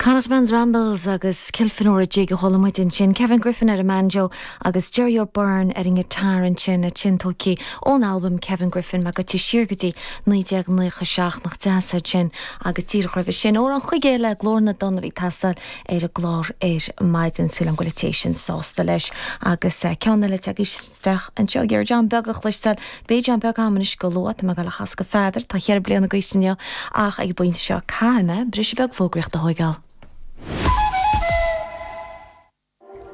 Connacht Man's Rambles agus Kilfenora Jig a chuala muid ansin, Kevin Griffin ar an mbanjo agus Gerry O'Beirne ar an ngiotár ansin, a tiontóigtí ón albam Kevin Griffin má ghabhtar siar go dtí 1997 nach deas iad sin agus díreach roimhe sin ó an chúige eile Clár na dTonn a bhí ag teastáil ar an gclár ar maidin. Súil liom go bhfuil tú féin sásta leis. Agus ceann eile atá tagtha isteach anseo, ag iarraidh An Beag a chloisteáil Beidh An Beag agam anois go luath tá mé ag dul á chasadh do Pheadar, tá cheithre bliana caite inniu, ach ag an bpointe seo caithfidh mé briseadh beag fógraíochta a thóigeáil.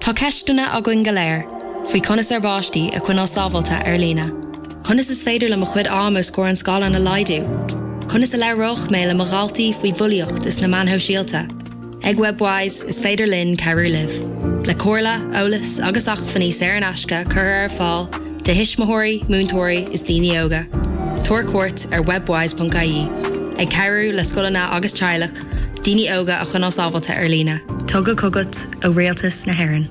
Tá ceisteanna againn go léir faoi conas ár bpáistí a choinneáil sábháilte ar líne, conas is féidir le mo chuid am os comhair an scáileáin a laghdú, conas a labhróidh mé le mo dhaltaí faoi bhulaíocht is na meáin shóisialta. Ag Webwise is féidir linn cabhrú libh le comhairle, eolas agus acmhainní saor in aisce a chur ar fáil do thuismitheoirí, múinteoirí is daoine óga. Tabhair cuairt ar webwise.ie ag cabhrú le scoileanna agus teaghlaigh daoine óga a choinneáil sábháilte ar líne. Tugtha chugat ó Rialtas na hÉireann.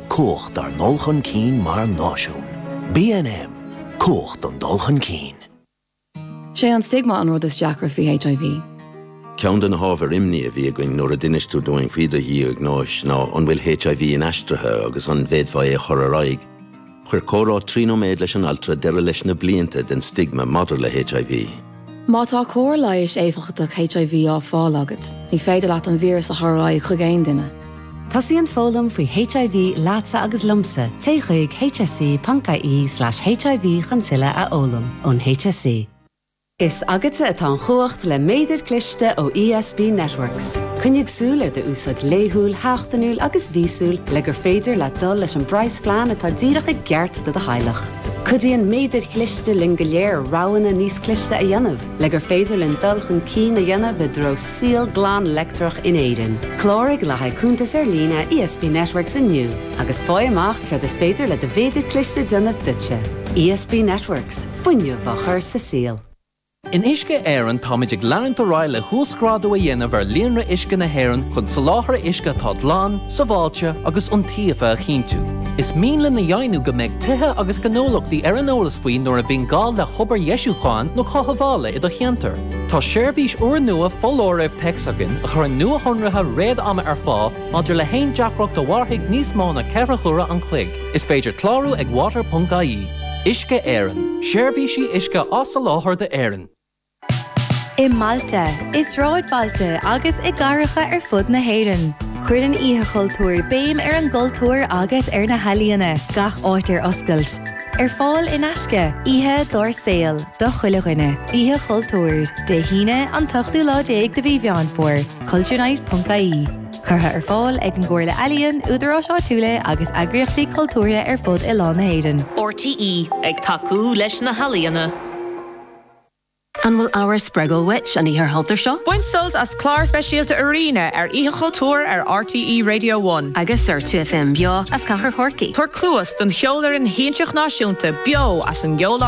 Cumhacht ár ndul chun cinn mar náisiún. BNM, Cumhacht an dul chun cinn. Sé an stigma an rud is deacra faoi HIV. Ceann de na hábhair imní a bhí againn nuair a d'inis tú dúinn faoi do dhiagnóis ná an bhfuil HIV inaistrithe agus an bhféadfá é a chur ar aghaidh. Chuir comhrá trí nóiméad leis an altra deireadh leis na blianta den stigma maidir le HIV. Má tá cóir leighis éifeachtach HIV á fáil agat, ní féidir leat an víreas a chur ar aghaidh chuig aon duine. Tosaíonn foghlaim faoi HIV leatsa agus liomsa, téigh chuig hse.ie slash HIV chun tuilleadh a fhoghlaim. Ón HSE. Is agatsa atá an chumhacht le Méadair Cliste ó ESB Networks. Coinnigh súil ar do úsáid laethúil, sheachtainiúil agus mhíosúil le gur féidir leat dul leis an bpraghasphlean atá díreach i gceart do do theaghlach. Cuidíonn méadair chliste linn go léir roghanna níos cliste a dhéanamh le gur féidir linn dul chun cinn a dhéanamh i dtreo saol glan leictreach in Éirinn. Cláraigh le haghaidh cuntas ar líne ESB Networks inniu agus fáigh amach céard is féidir le do mhéadar cliste a dhéanamh duitse. ESB Networks, fuinneamh á chur sa saol. In Uisce Éireann táimid ag leanúint ar aghaidh le huasghrádú a dhéanamh ar líonra uisce na hÉireann chun soláthar uisce atá glan, sábháilte agus iontaofa a chinntiú. Is mian linn a dheimhniú go mbeidh tithe agus gnólachtaí ar an eolas faoi nuair a bhíonn gá le hobair dheisiúcháin nó chothabhála i do cheantar. Tá seirbhís úrnua foláirimh téacs againn a chuireann nuashonruithe réad-ama ar fáil maidir le haon deacracht a mhairfidh níos mó ná ceithre huaire an chloig. Is féidir clárú ag water.ie. Uisce Éireann, Seirbhísí uisce á soláthar d'Éirinn. I mbailte, i sráidbhailte agus i gcathracha ar fud na hÉireann, cuireann Oíche Chultúir béim ar an gcultúr agus ar na healaíona, gach áit ar oscailt. Ar fáil in aisce, oíche dár saol do chuile dhuine. Oíche Chultúir, Dé hAoine, an t-ochtú lá déag de mhí Mheán Fómhair, culturenight.ie. Curtha ar fáil ag an gComhairle Ealaíon, údaráis áitiúla agus eagraíochtaí cultúrtha ar fud oileán na hÉireann. RTÉ ag tacú leis na healaíona. An bhfuil ábhar spreagúil uait an Oíche Chultúir seo? Bain sult as clár speisialta Arena ar Oíche Chultúir ar RTÉ Radio One. Agus ar 2FM beo as Cathair Chorcaí. Tabhair cluas don Cheolfhoireann Shiansach Náisiúnta beo as an gCeoláras.